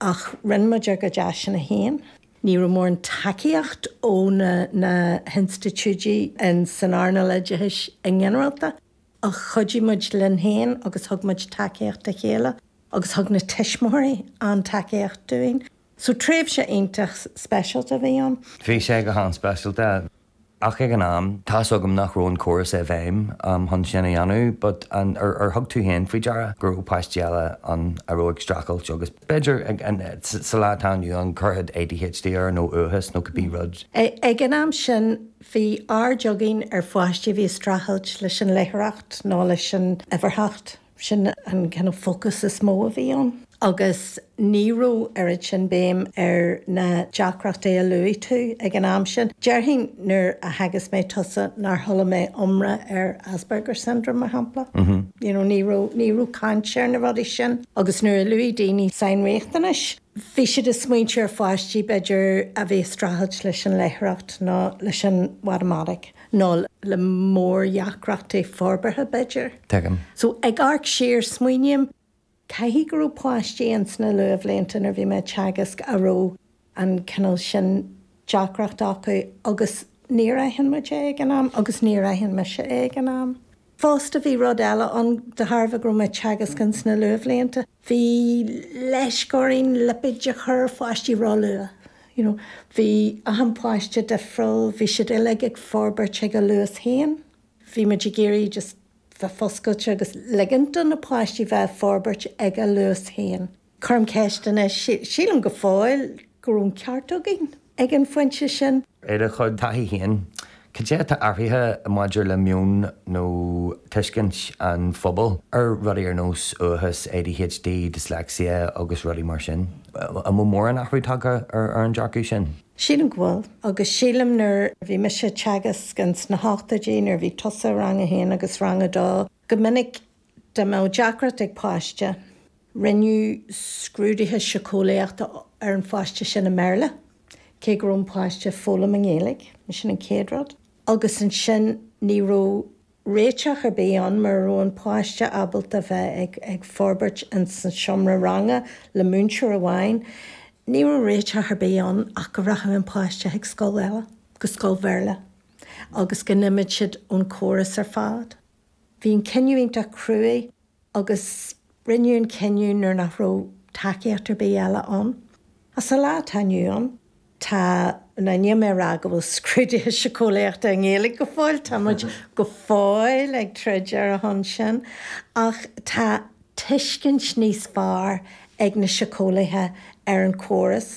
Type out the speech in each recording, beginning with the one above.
Ach rinne muid ár gcuid áiseanna féin. Ní raibh mórán tacaíocht ó na na hinstitiúidí insan earnáil oideachais go ginearálta ach chuidigh muid linn féin agus thug muid tacaíocht dá chéile agus thug na tuismitheoirí an-tacaíocht dúinn. So tréimhse iontach speisialta a bhí ann. Bhí sé go han-speisialta. Ach ag an am, tá a fhios agam nach raibh an córas i bhfeidhm chun sin a dhéanamh but ar thug tú féin faoi deara go raibh páistí eile ann a raibh ag streachailt agus b'fhéidir sa lá atá inniu ann cuirfeadh ADHD air nó uathachas nó cibé rud. Ag an am sin, bhí aird againn ar pháistí a bhí ag streachailt leis an léitheoireacht nó leis an uimhearthacht. Sin an cineál fócas is mó a bhí ann agus ní raibh oiread sin béim ar na deacrachtaí a luaigh tú ag an am sin. Déarfainn nuair a theagasc mé tusa nár chuala mé iomrá ar Asperger syndrome, mar shampla. You know, ní raibh caint ar na rudaí sin agus nuair a luaigh daoine sainriachtanais, Bhí siad ag smaointiú ar pháistí, b'fhéidir, a bhí ag streachailt leis an léitheoireacht nó leis an mhatamaitic nó le mórdheacrachtaí forbartha, b'fhéidir. Tuigim. So, ag amharc siar, smaoiním, caithfidh go raibh páistí ins na luathbhlianta nuair a bhí mé ag teagasc a raibh an cineál sin deacracht acu agus níor aithin muid é ag an am agus níor aithin mise é ag an am. Fosta, bhí rud eile ann, de thairbhe go raibh mé ag teagasc ins na luathbhlianta, bhí leisc orainn lipéid a chur ar pháistí ró-luath. You know, bhí achan páiste difriúil, bhí siad uilig ag forbairt ag a luas féin. Bhí muid ag iarraidh just bheith foscailte agus ligint do na páistí bheith ag forbairt ag a luas féin. Cuirim ceist air anois, sílim go fóill go raibh an ceart againn ag an phointe sin. I do chuid taithí féin, cad é atá athraithe maidir le meon nó tuiscint an phobail ar rudaí ar nós uathachas, ADHD, dyslexia agus rudaí mar sin? An bhfuil mórán athrú tagtha ar an dearcadh sin? Sílim go bhfuil. Agus sílim nuair a bhí mise ag teagasc ins na hochtóidí, nuair a bhí tusa i rang a haon agus rang a dó, go minic Dá mbeadh deacracht ag páiste, rinneadh scrúduithe síceolaíochta ar an pháiste sin i mBéarla, cé go raibh an páiste ag foghlaim i nGaeilge, sin an chéad rud. Agus ansin ní raibh réiteach ar bith ann mura raibh an páiste ábalta bheith ag forbairt ins an seomra ranga le múinteoir amháin, ní raibh réiteach ar bith ann ach go rachadh an páiste chuig scoil, go scoil Bhéarla agus go n-imeodh siad ón chóras ar fad. Bhí an cinneadh iontach cruaidh agus rinneadh an cinneadh nuair nach raibh tacaíocht ar bith eile ann. Ach sa lá atá inniu ann, tá, ná níl mé ag rá go bhfuil scrúduithe síceolaíochta i nGaeilge go fóill, tá muid go fóill ag troid ar a shon sin, ach tá tuiscint níos fearr ag na síceolaithe ar an gcóras,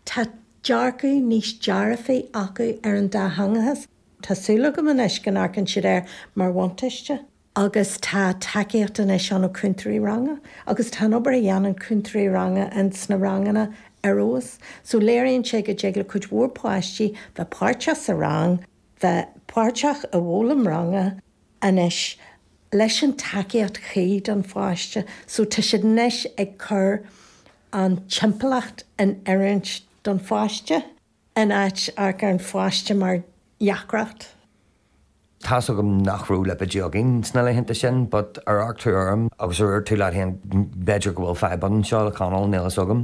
tá dearcadh níos dearfaí acu ar an dátheangachas. Tá súil agam anois go n-amharcann siad air mar bhuntáiste. Agus tá tacaíocht anois ann ó chúntóirí ranga agus tá an obair a dhéanann cúntóirí ranga in sna ranganna ar fheabhas. So léiríonn sé go dtig le cuid mhór páistí bheith páirteach sa rang, bheith páirteach i bhfoghlaim ranga anois leis an tacaíocht chuí don pháiste. So tá siad anois ag cur an timpeallacht in oiriúint don pháiste. in áit amharc ar an pháiste mar dheacracht. Tá's agam nach raibh lipéidí againn sna laethanta sin but ar amharc tú orm agus ar dhúirt tú leat féin b'fhéidir go bhfuil fadhb anseo le Conall, níl fhios agam.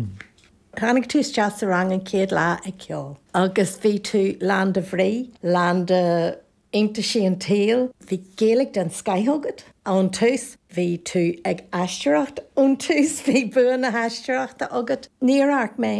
Tháinig tú isteach sa rang an chéad lá ag ceol agus bhí tú lán de bhrí, lán de. Iontaisí an tsaoil. Bhí Gaeilge den scoth agat ón tús. Bhí tú ag aisteoireacht ón tús. Bhí bua na haisteoireachta agat. Níor amharc mé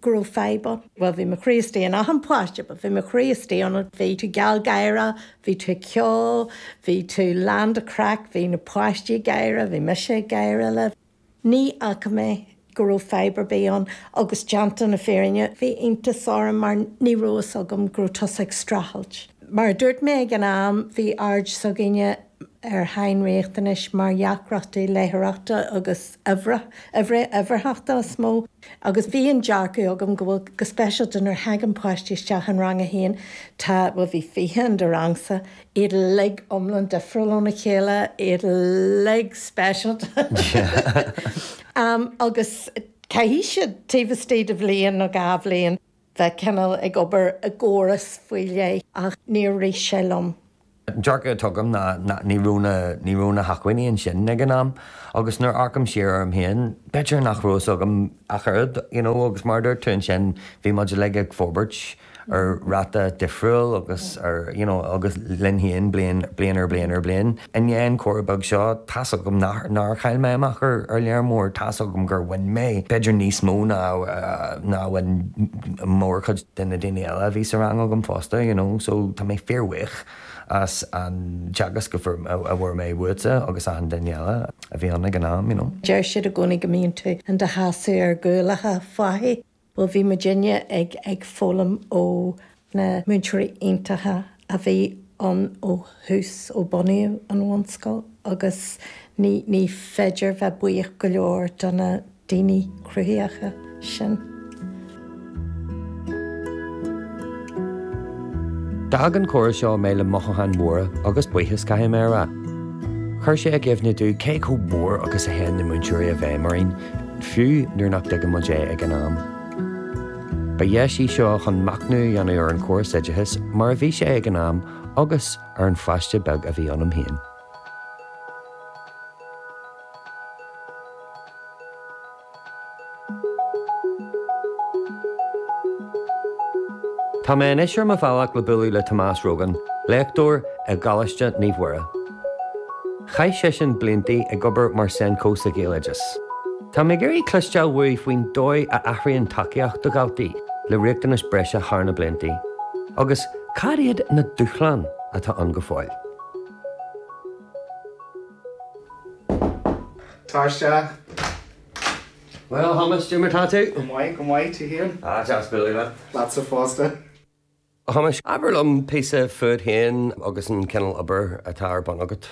go raibh fadhb ann. Bhuel, bhí mo chroí istigh in achan páiste, but bhí mo chroí istigh ionat. Bhí tú geal gáire, bhí tú ag ceol, bhí tú lán den chraic, bhí na páistí ag gáire, bhí mise ag gáire libh. Ní fhaca mé go raibh fadhb ar bith ann agus déanta na fírinne bhí iontas orm mar ní raibh fhios agam go raibh tusa ag streachailt. Mar a dúirt mé ag an am bhí aird s'againne ar shainriachtanais mar dheacrachtaí leitheoireachta agus uimhreacha-uimhearthachta is mó agus bhí an dearcadh agam go bhfuil, go speisialta nuair a thagann páistí isteach in rang a haon, tá, bhuel bhí fiche in do rangsa, iad uilig iomlán difriúil óna chéile, iad uilig speisialta agus caithfidh siad, taobh istigh de bhliain nó dhá bhliain, bheith cineál ag obair i gcóras faoi leith ach níor rith sé liom. An dearcadh atá agam ná ní raibh na hacmhainní ansin ag an am agus nuair a amharcaim siar orm féin, b'fhéidir nach raibh fhios agam ach oiread you know agus mar a dúirt tú ansin, bhí muid uilig ag forbairt. ar ráta difriúil agus ar, you know, agus linn féin bliain, bliain ar bliain ar bliain. I ndiaidh an chomhrá beag seo, tá's agam nach, nár chaill mé amach ar, ar lear mór, tá's agam gur bhain mé b'fhéidir níos mó ná, ná a bhain mórchuid de na daoine eile a bhí sa rang agam fosta, you know. So, tá mé fíorbhuíoch as an teagasc a fuair, a bhfuair mé uaitse agus achan duine eile a bhí ann ag an am, you know. Deir siad i gcónaí go mbíonn tú in do sheasamh ar ghuailleacha fathach. Bhuel, bhí muidinne ag, ag foghlaim ó na múinteoirí iontacha a bhí ann ó thús, ó bunaíodh an bhunscoil agus ní, ní féidir bheith buíoch go leor do na daoine cruthaitheacha sin. D'fhág an comhrá seo mé le mothúcháin mhóra agus buíochas, caithfidh mé a rá. Chuir sé i gcuimhne domh cé chomh mór agus a théann na múinteoirí i bhfeidhm orainn. fiú nuair nach dtuigeann muid é ag an am. Ba deis í seo chun machnamh a dhéanamh ar an chóras oideachais mar a bhí sé ag an am agus ar an pháiste beag a bhí ionam féin. Tá mé anois ar mo bhealach le bualadh le Tomás Rogan, léachtóir i gColáiste Naomh Muire. Chaith seisean blianta ag obair mar Senco sa Ghaeloideachas. Tá mé ag iarraidh cloisteáil uaidh faoin dóigh ar athraigh an tacaíocht do dhaltaí le riachtanais bhreise thar na blianta agus cad iad na dúshláin atá ann go fóill. Tar isteach. Bhuel, a Thomáis, cé mar tá tú? Go maith, go maith, tú féin? Ah, deas bualadh leat. Leatsa fosta. A Thomáis, abair liom píosa fút féin agus an cineál obair atá ar bun agat.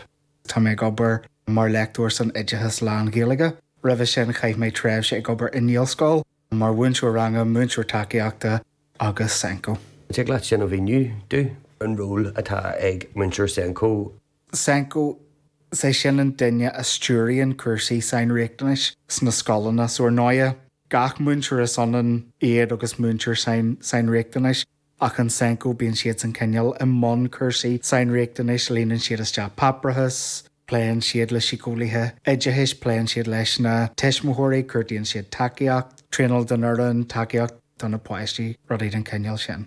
Tá mé ag obair mar léachtóir san oideachas lán-Ghaeilge. Roimhe sin chaith mé tréimhse ag obair i nGaelscoil, mar mhúinteoir ranga, múinteoir tacaíochta agus SENCo. An dtig leat sin a mhíniú domh, an ról atá ag múinteoir SENCo? SENCo, is é sin an duine a stiúraíonn cúrsaí sainriachtanais sna scoileanna. So ar ndóigh, gach múinteoir is ionann iad agus múinteoir sainriachtanais ach an SENCo bíonn siadsan cineál i mbun cúrsaí sainriachtanais, líonann siad isteach páipéarachas, pléann siad le síceolaithe oideachais, pléann siad leis na tuismitheoirí, cuartaíonn siad tacaíocht, traenáil don fhoireann, tacaíocht do na páistí, rudaí den chineál sin.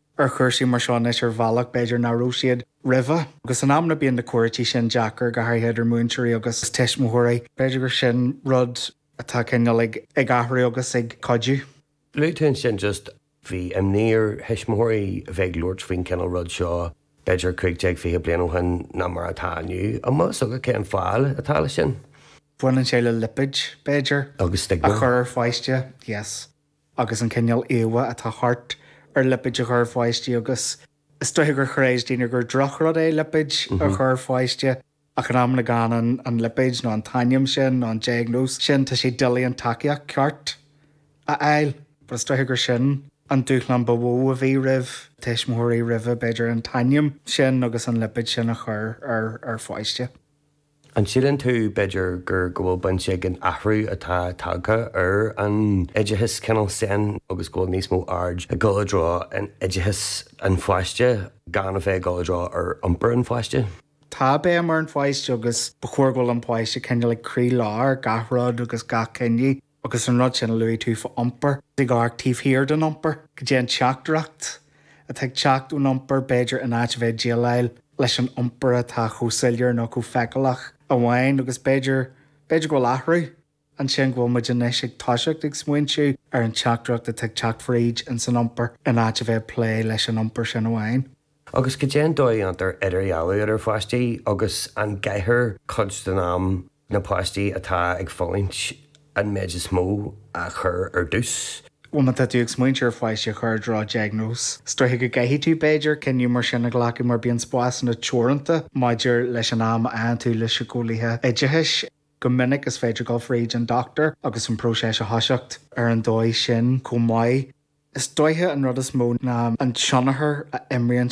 ar chúrsaí mar seo anois ar bhealach, b'fhéidir, nach raibh siad roimhe. Agus in amanna bíonn na comhráití sin deacair, go háirithe idir múinteoirí agus tuismitheoirí. B'fhéidir gur sin rud atá cineál ag athrú agus ag cuidiú. Luaigh tú ansin just bhí imní ar thuismitheoirí a bheith ag labhairt faoin cineál rud seo b'fhéidir cúig déag, fiche bliain ó shin ná mar atá inniu. An bhfuil a fhios agat cad é an fáth atá leis sin? Baineann sé le lipéid, b'fhéidir. Agus stigma. A chur ar pháiste. Yes. agus an cineál íomhá atá thart ar lipéid a chur ar pháistí agus is dóiche gur chreid daoine gur drochrud é lipéid a chur ar pháiste ach in amanna gan an lipéid nó an t-ainm sin nó an diagnóis sin tá sé doiligh an tacaíocht cheart a fháil but is dóiche gur sin an dúshlán ba mhó a bhí roimh tuismitheoirí roimhe b'fhéidir an t-ainm sin agus an lipéid sin a chur ar pháiste. An síleann tú, b'fhéidir, gur go bhfuil baint ag an athrú atá tagtha ar an oideachas cineál sin agus go bhfuil níos mó aird ag dul i dtreo an oideachas an pháiste gan a bheith ag dul i dtreo ar iompar an pháiste? Tá béim ar an pháiste agus ba chóir go bhfuil an páiste cineál ag croílár gach rud agus gach cinneadh. agus an rud sin a luaigh tú faoi iompar ag amharc taobh thiar den iompar, go dté an teachtaireacht atá ag teacht ón iompar b'fhéidir in áit a bheith ag déileáil leis an iompar atá chomh soiléir nó chomh feiceálach amháin agus b'fhéidir, b'fhéidir go bhfuil athrú ansin, go bhfuil muid anois ag toiseacht ag smaointiú ar an teachtaireacht atá ag teacht fríd ins an iompar in áit a bheith ag plé leis an iompar sin amháin. Agus go dté an dóigh a ndéantar idirdhealú idir pháistí agus an gcaithfear cuid den am. na páistí atá ag fulaingt an méid is mó a chur ar dtús. bhuel má tá tú ag smaointeamh ar pháiste a chur i dtreo diagnóis is dóiche go gcaithfidh tú b'fhéidir cinneadh mar sin a ghlacadh mar bíonn spásanna teoranta maidir leis an am a fhaigheann tú le síceolaithe oideachais go minic is féidir dul fríd an dochtúir agus an próiseas a thoiseacht ar an dóigh sin chomh maith. Is dóiche an rud is mó ná an tionchar a imríonn